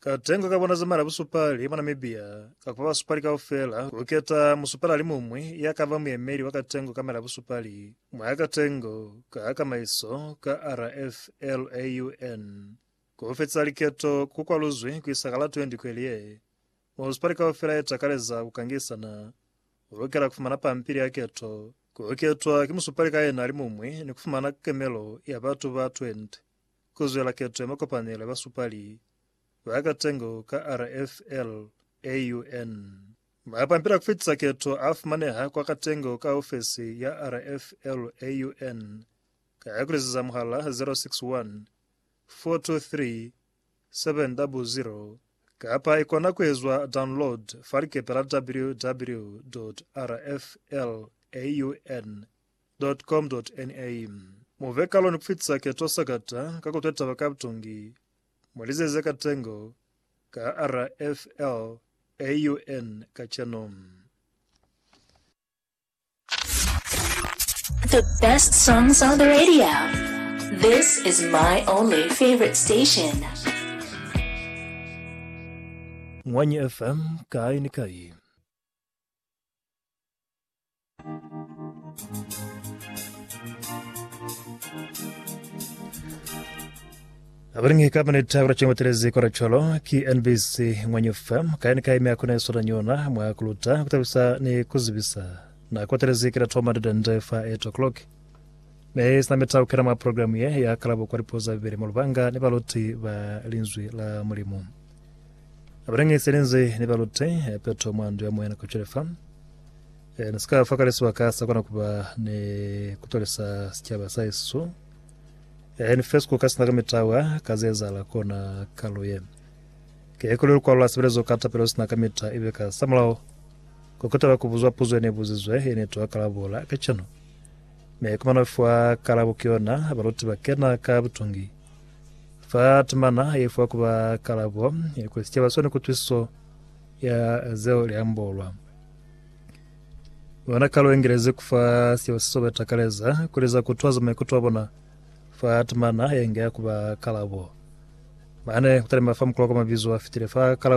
Katengo ka bona zamela busupali mwa Namibia ka kupa basupali kaufela kuketa musupali alimuñwi ya kaba muyemeli wa katengo kamela busupali mwa katengo ka kamaiso ka RFLAUN. Kufetisa liketo ku kwaluzwi kuisa ka la 20 kweli ye. Musupali kaufela ye takaleza kukangisana ulukela kufumana pampili ya keto, kuketwa ki musupali ka yena alimuñwi ni kufumana kemelo ya batu ba 20. ku zwela keto ya makopanelo ya basupali ba katengo ka RFL AUN. Mapampila a ku fitisa keto a fumaneha kwa katengo ka ofesi ya RFL AUN ka ku liziza muhala 061 423 700 kapa i kona ku ezwa download fa likepe la www.rflaun.org. Dot-com-dot-NA Mu ve kalo ni ku fitisa keto sakata ka ku twetaba ka butungi mwa lizazi za katengo ka RFL AUN kacenu. The best songs on the radio. This is my only favorite station. Ngwanyi FM, kai ni kai. Abalingi kapa ni tabo chengo telezi kwa cholo ki NBC mwenye FM kaini kai mya kuna sura nyona mwa kuluta kutabisa ni kuzibisa na kwa telezi kila toma dada ndefa 8 o'clock ne sina meta ukera mwa programu ye ya kalabo kwa lipoza bibele mulubanga ni baluti ba linzwi la mulimu Abalingisi ne nze ni ba lute peto mwa ndu ya moya nako cwale fa e, ni sika fa kale sibaka sa kona kuba ne kutolisa sicaba sa isu e, ni fesku ka sina ka mitawa ka zezala kona kalo ye ke kuli lukwalo la sebelezo ka tapelo sina ka mita ibe ka samulao ko kutaba kubuzwa puzo ne buzizwe e ne toa kalabola ka cano me kumana fwa kalabo ke yona baluti ba kena ka butungi Fa temana ye fa kuba kalabo ya kuli sicaba sone kutwisiso ya zeo liambolwa. Bona kalo engelezi kufa sicaba se sobe takaleza kuli za kutwaza maikuto a bona fa temana yenge ya kuba kalabo. Mane kutalima fa mukula kwa mabizo a fitile fa kalabo